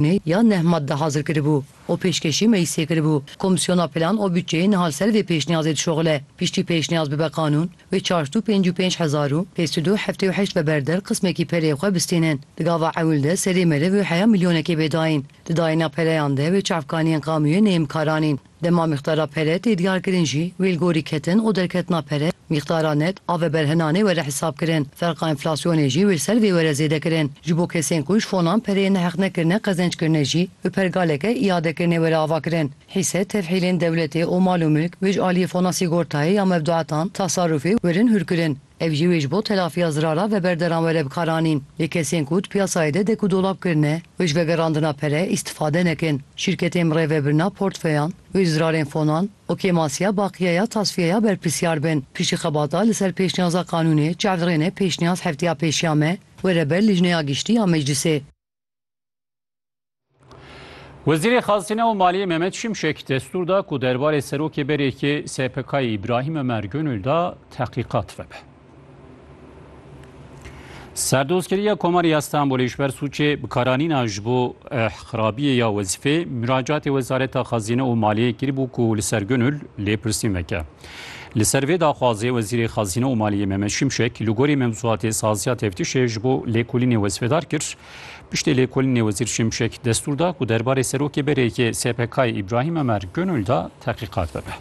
Me ya neh madde hazir kiribû û pêşkêşî meclîsê kiribû. Komîsyona Plan û Butçeyê niha li ser vê pêşniyazê dişoxile. Piştî pêşniyaz bibe qanûn, wê çarşd û pênc û pênc hezar û pênc sed û heftê û heşt ve berder qismekî pereyê xwe bistînin. Di gava ewil de serê meriv û heya milyonekê bê dayîn. Di dayîna pereyan de wê çavkaniyên qamûyê neyimkaranîn. Dema mîqdara pere tê diyarkirin jî wê li gorî ketin û derketina pere, mîqdara net a veberhinan ê were hesabkirin. Ferqa enflasyonê jî wê li ser vê were zêdekirin. Ji bo kesên ku ji fonan pereyên neheqnekirine qezenc kirine jî bi pergaleke îadekirinê were avakirin. Hîse, tevhîlên dewletê û mal û milk wê ji aliyê fona sîgortayê ya mevduetan, tasarufê, werin hûrkirin. Ev jî wê ji bo telafiya zirara veberdaran were bikaranîn. Lê kesên ku di piyasayê de dek û dolab kirine wê ji vegerandina pere îstifade nekin. Şîrketên bi rêvebirina portfeyan wê ji zirarên fonan, okêmasiya baqiya ya tasfiyeya berpirsiyar bin. Piştî xebata li ser pêşniyaza qanûnê çavdrêne pêşniyaz hefteya pêşiya me were ber Lijneya Giştî ya Meclisê. Wezîrê Xazine û Maliyê Mehmet Şimşek destûr da ku derbarê serokê berêkê SPK'yê Îbrahîm Ömer Gönül da tehqîqat vebe. Serdozkeriya Komarê ya Stenbolê ji ber sûcê bikaranîna ji bo eh, xirabiyê ya wezîfê miracatê Wezareta Xazine û Maliyê kiribû ku li ser Gönül lêpirsîn veke. Li ser vê daxwazê Wezîrê Xezîne û Maliyê Mehmet Şimşek li gorî mewzuatê saziya teftîşê ji bo lêkolînê wezfedar kir. Piştê lêkolînê Wezîr Şimşek destûr da ku derbarê Serokê Berê yê SPK'ê Îbrahîm Emer Gönül da tehqîqat bibe.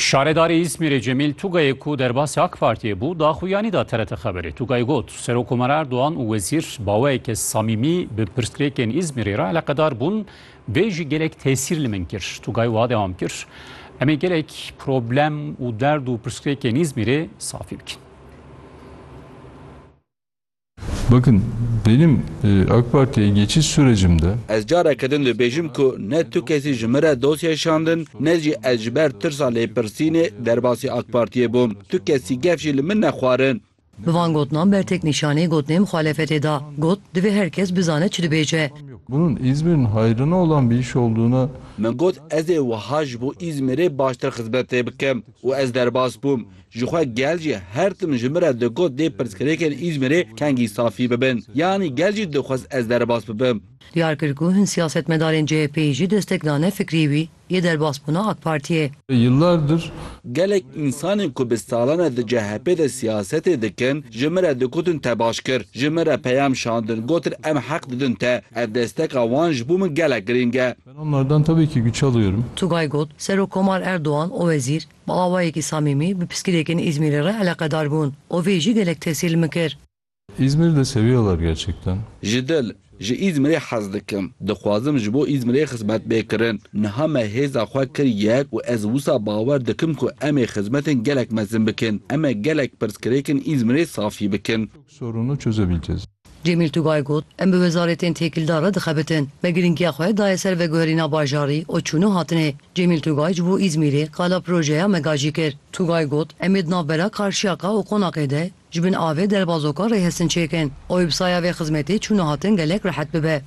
Şaredarê Îzmîrê Cemîl Tugayê ku derbasî AK Partiyê bû, daxuyanî da TRT Xeberê. Tugay got, Serokkomar Erdogan û wezîr baweyeke samîmî bi pirsgirêkên Îzmîrê re eleqedar bûn, vê jî gelek tesîr li min kir. Tugay wiha dewam kir, Em ê gelek problem û derd û pirsgirêkên Îzmîrê safî bikin. Bakın benim AK Parti'ye geçiş sürecimde. Ez careke din dibêjim ku ne tu kesî ji min re dosyayê şandin ne jî ez ji ber tirsa lêpirsînê derbasî AK Partiyê bûm. Tu kesî gef jî li min nexwarin. Bi van gotinan bertek nîşanî gotinê muxalefetê da. Got, divê her kes bizane çi dibêje. Bunun İzmir'in hayrına olan bir iş olduğuna. Min got, ez ê wiha ji bo İzmir'ê baştir xizmetê bikim û ez derbas bûm. Jixwe gel jî her tim ji min re digot dê pirsgirêkên Îzmîrê kengî safî bibin. Yanî gel jî dixwest ez derbas bibim. Diyar kir ku hin siyasetmedarên CHP'yî jî destek dane fikrî wî yê derbasbûna AK Partiyê. Yıllardır. Gelek însanên ku bi salan e di CHP'ê de siyasetê dikin, ji min re digotin te baş kir. Ji min re peyam şandin, gotin em heq didin te. Ev desteka wan ji bo min gelek girîng e. Ben onlardan tabii ki güç alıyorum. Tugay got, Serokkomar Erdogan û wezîr, Bi awayekî samîmî bi piskilêkên Îzmîrê re eleqedar bûn û vê jî gelek tesîl min kir. İzmir de seviyorlar gerçekten. Ji dil, ji Îzmirê hez dikim. Dixwazim ji bo Îzmirê xizmet bê kirin. Niha me hêza xwe kir yek û ez wisa bawer dikim ku em ê xizmetên gelek mezin bikin. Em ê gelek pirsgirêkên Îzmirê safî bikin. Sorunu çözebileceğiz. Cemîl Tugay got, Em bi wezaretên têkildar re dixebitin. Me girîngiya xwe daye ser veguherîna bajarî û çûn û hatinê. Cemîl Tugay ji bo Îzmîrê qala projeya me gajî kir. Tugay got, Em ê di navbera Karşiyaka û Qonaqê de ji bin avê derbazoka rêhestin çêkin û wêbsaya vê xizmetê çûn û hatin gelek rehet bibe.